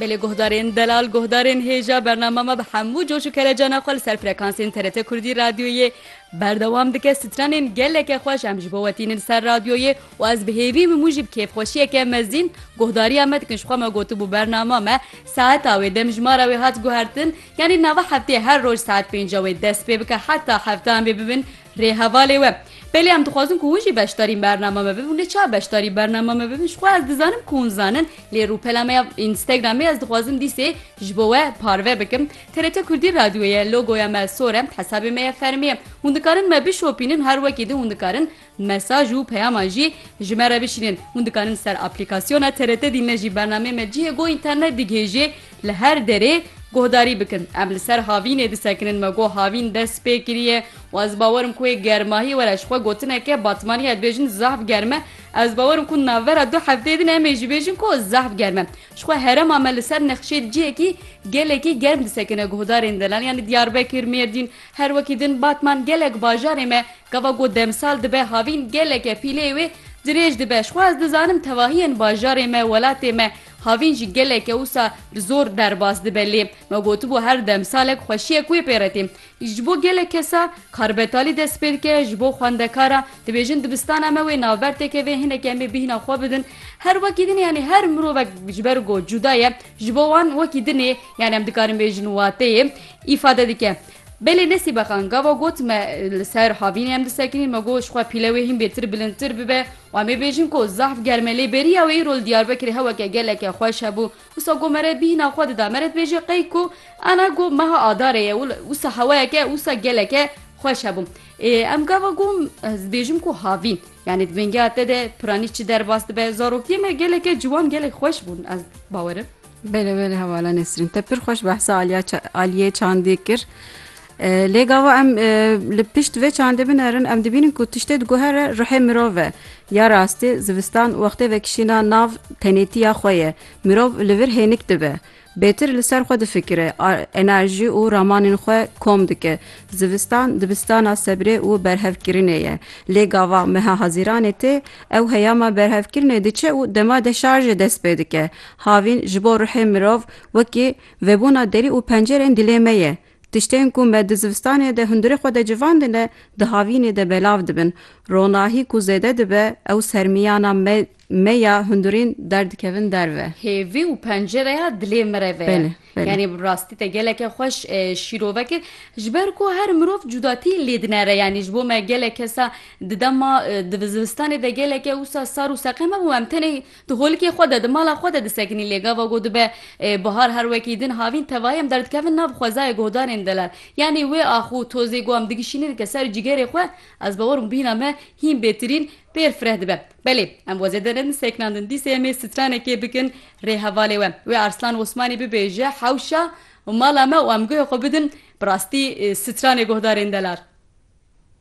Belê guhdarên delal guhdarên hêja bernama me bi hemû coş û kelecana xwe li ser frekansên TRT Kurdî radyoyê berdewam dike stranên geleke xweş em ji bo we tînin ser radyoyê û ez bi hêvî min mûjîb kêfxweşiyeke mezin guhdariya me dikin ji xwe me gotibû bernama me saeta wê demjimara wê hat guhertin yanî nava hefteyê her roj saet pênca wê dest pê bike heta heftan bê bibin Rê hevalê we. Belê em dixwazin ku hûn jî beşdarîn bernama me bibin lê ça beşdarî bernama me bibin jixwe ez dizanim ku hûn zanin lê rûpela me ya Instagramê ez dixwazim dîsê ji bo we parve bikim. TRT Kurdî Radyoyê ye logoya me sor e hesabê me ye fermî ye. Hûn dikarin me bişopînin her wekî din hûn dikarin mesaj û peyaman jî ji me re bişînin. Hûn dikarin ser aplîkasyona TRT dîn me jî bernameyê me cihê ku înternet digihêjê Li her derê guhdarî bikin. Em li ser havînê disekinin, me got havîn dest pê kiriye û ez bawer im ku ê germahî were. Ji xwe gotineke batmanî ya dibêjin zehf germ e. Ez bawer im ku navbera du hefteyê din em ê jî bêjin ku zehf germ e. Ji xwe herema me li ser nexşê di cihekî gelekî germ disekine. Guhdarên delal yanî Diyarbekir, Mêrdîn her wekî din batman gelek bajarê me gava ku demsal dibe havîn geleke pîleyê wê dirêj dibe. Ji xwe ez dizanim tevahiyên bajarê me, welatê me Havîn jî geleke wisa bi zor derbas dibe lê me gotibû her demsalek xweşiyek wê pê re tê. Ji bo gelek kesa kar betalî dest pê dike, ji bo xwendekaran dibêjin dibistana me wê navber teke vê hinek em ê bîhna xwe bidin. Her wekî din yanî her mirovek ji ber ku cuda ye ji bo wan wekî din ê yanî em dikarin bêjin wateyê îfade dike. Belê Nesîbe Xan gava got me li ser havînê em disekinîn me got ji xwe pîle wê hîn bêtir bilindtir bibe Em ê bêjin ku zehf ger me lê beriya wê îro li Diyarbekirê heweke geleke xweş hebû. Wisa ku mere bîhna xwe dida mere dibêje qey ku ana ku meha Adarê ye û wisa hewayeke wisa geleke xweş hebû. Ê em gava ku ez dibêjim ku havî yanî di vêngeya te de piranî çi derbas dibe. Zarokiyê me geleke ciwan gelek xweş bûn ez bawerim. Bele bele hevala Nesrîn te pir xweş behsa Aliya Aliyê Çandê kir. Lê gava em li pişt vê çandê binerin em dibînin ku tiştê diguhere ruhê mirov e. Ya rastî zivistan wextê vekişîna nav tenêtiya xwe ye. Mirov li vir hênik dibe. Bêtir li ser xwe difikire, enerjî û ramanên xwe kom dike. Zivistan dibistana sebrê û berhevkirinê ye. Lê gava meha Hezîranê tê, ew heyama berhevkirinê diçe û dema deşarjê dest pê dike. Havîn ji bo ruhê mirov wekî vebûna derî û pencerên dilê me ye. Tiştên ku me di zivistanê de hundirê xwe de civandine, di havînê de belav dibin. Ronahî ku zêde dibe, ew sermiyana me me ya hundirên derdikevin derve. Hêvî û pencereya dilê mireve ye. Belê, belê. Yanî bi rastî te geleke xweş şîrove kir. Ji ber ku her mirov cudatî lê dinere. Yanî ji bo me gelek kesa di dema di zivistanê de geleke wisa sar û seqem hebû em tenê Di holkê xwe de, di mala xwe de disekinî lê gava ku dibe bihar her wekî din havîn tevayî em derdikevin nav xwezayê guhdarên delal. Yanî wê ax û tozê ku em digişînin dike ser cîgerê xwe, ez bawer bûm bîna me hîn bêtirîn, pêr fireh dibe. Belê, em wezê de ne sekinandin, dîsê em ê stranekê bikin rê hevalê we. Wê Arslan Osmanî bibêje hewşa mala me û em guhê xwe bidin bi rastî stranê guhdarên delal.